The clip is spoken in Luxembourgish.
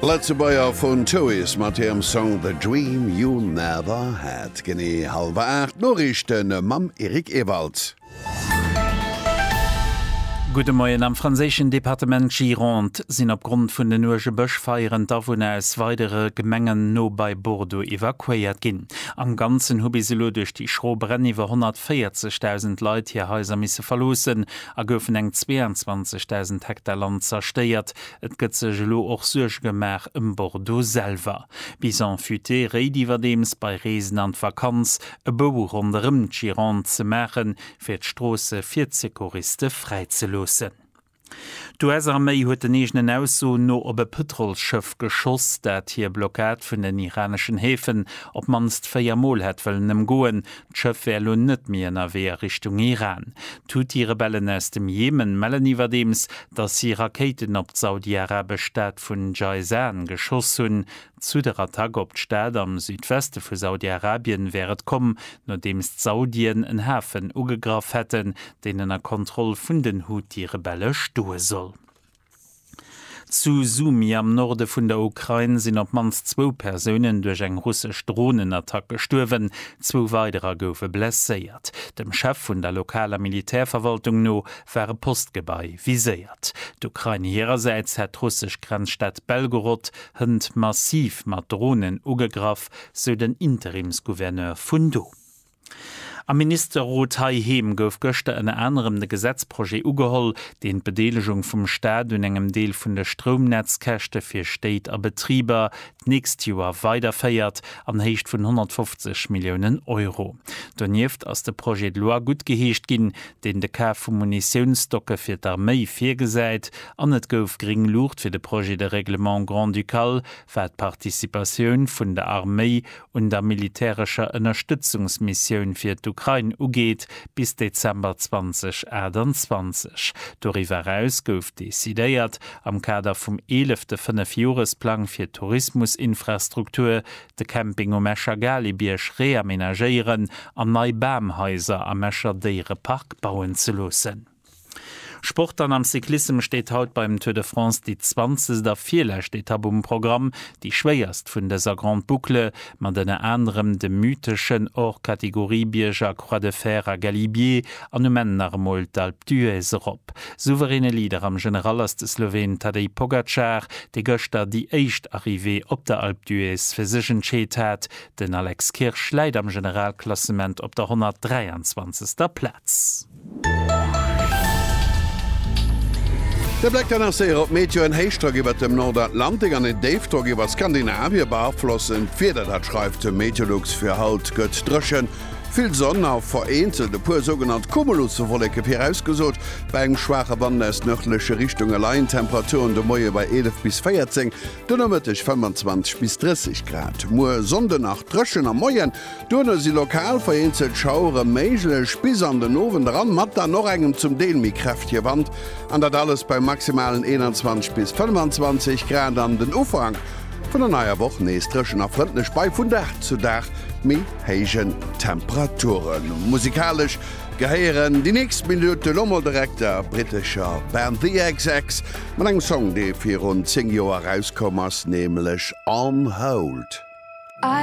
Lëtzebuerger vun Choice mat hirem Song The Dream You Never Had. Genee hallwer 8, d'Noriichte mam Eric Ewald. Gudde Moien, Am franséischen Departement Gironde sinn opgrond vun den uerge Bëschfeieren d'Awunner aus weidere Gemengen no bei Bordeaux evakuéiert ginn. Am Ganzen hu bis elo duerch déi schro Bränn iwwer 140.000 Leit hir Haiser misse verloossen, a goufen eng 22.000 Hektar Land zerstéiert. Et gëtt sech elo och Suerge gemaach ëm Bordeaux selwer. Bison futé réit iwwerdeems, bei Reesen an d'Vakanz e Bou ronderëm d'Gironde ze maachen, fir d'Stroosse fir d'Secouriste fräi ze loossen. D'US-Arméi huet den eegenen Aussoen no op e Pëtrolsschëff geschoss, dat hir Blockad vun den iraneschen Häfen op d'mannst véier Mol hätt wëllen ëmgoen. D'Schëff wär elo net méi ënnerwee a Richtung Iran. D'Huthi-Rebellen aus dem Jemen mellen iwwerdeems, datt si Rakéiten op d'saudi-arabesch Stad vun Jayzan geschoss hunn. Zu der Attack op d'Stad am Südweste vu Saudi-Arabien wär et komm, nodeems d'Saudien en Hafen ugegraff hätten, deen ënner Kontroll vun den Huthi-Rebelle stoe soll. Zu Sumy am Norde vun der Ukrain sinn op d'mannst zwou Persounen duerch eng russesch Dronenattack gestuerwen, zwou weiderer goufe blesséiert. Dem Chef vun der lokaler Militärverwaltung no war e Postgebai viséiert. D'Ukrain hirersäits hätt d'russesch Grenzstad Belgorod hënt massiv mat Dronen ugegraff, sou den Interimsgouverneur vun do. Am Ministerrot heiheem gouf gëschter ënner anerem de Gesetzprojet ugeholl, deen d'Bedeelegung vum Staat un engem Deel vun de Stroumnetzkäschte fir Stéit a Betriber d'nächst Joer weiderféiert an Héicht vun 150 Milliounen Euro. Donieft ass de Projet de loi guttgeheescht ginn, deen de Kaf vu Munitiounsstocke fir d'Arméi virgesäit an et gouf gréng Luucht fir de Projet de règlement grand-ducal, wat d'Participatioun vun der Arméi un der militärescher Ënnerstëtzungsmissioun fir d'Ukrain ugeet, bis Dezember 2028. Doriwwer eraus gouf decidéiert, am Kader vum eelefte Fënnefjoresplang fir d'Tourismusinfrastruktur, de Camping um Escher Galibierg reamenagéieren an nei Bamhaiser am Escher Déierepark bauen ze loossen. Sport an am Cyclissem steet haut beim Tour de France déi zwanzegt a virlescht Etapp um Programm, déi schwéierst vun dëser Grande Boucle, mat ënner anerem dem mytheschen Hors-Catégorie-Bierg a Croix de Fer a Galibier an um Enn nach emol d'Alpe d'Huez erop. Souveräne Leader am General ass de Sloween Tadej Pogacar, dee gëschter déi éischt Arrivée op der Alpe d'Huez fir sech entscheet hat. Den Alex Kirsch läit am Generalklassement op der 123. Plaz. De Bléck kann nach séier op d'Meteo. En Héichdrock iwwert dem Nordatlantik an e Déifdrock iwwer Skandinavie beaflossen d'Wieder. Dat schreift de Meteolux fir haut. Gëtt dréchen, vill Sonn a vereenzelt e puer sougenannt Cumuluswolleke virausgesot. Bei engem schwaache Wand aus nërdleche Richtunge leien d'Temperaturen de Moie bei 11 bis 14, den Nomëtteg 25 bis 30 Grad. Muer Sonnde nach dréchen, am Moien Duerno si lokal vereenzelt Schauere méiglech bis an den Owend eran, mat dann och engem zum Deel méi kräftege Wand, an dat alles bei maximalen 21 bis 25 Grad. An den Ufank vun der neier Woch nees dréchen a frëndlech bei vun Dag zu Dag méi héijen Temperaturen. Musikalesch gehéieren déi nächst Minutte lo mol direkt der brittescher Band The xx mat engem Song, dee virun 10 Joer erauskoum ass, nämlech On Hold.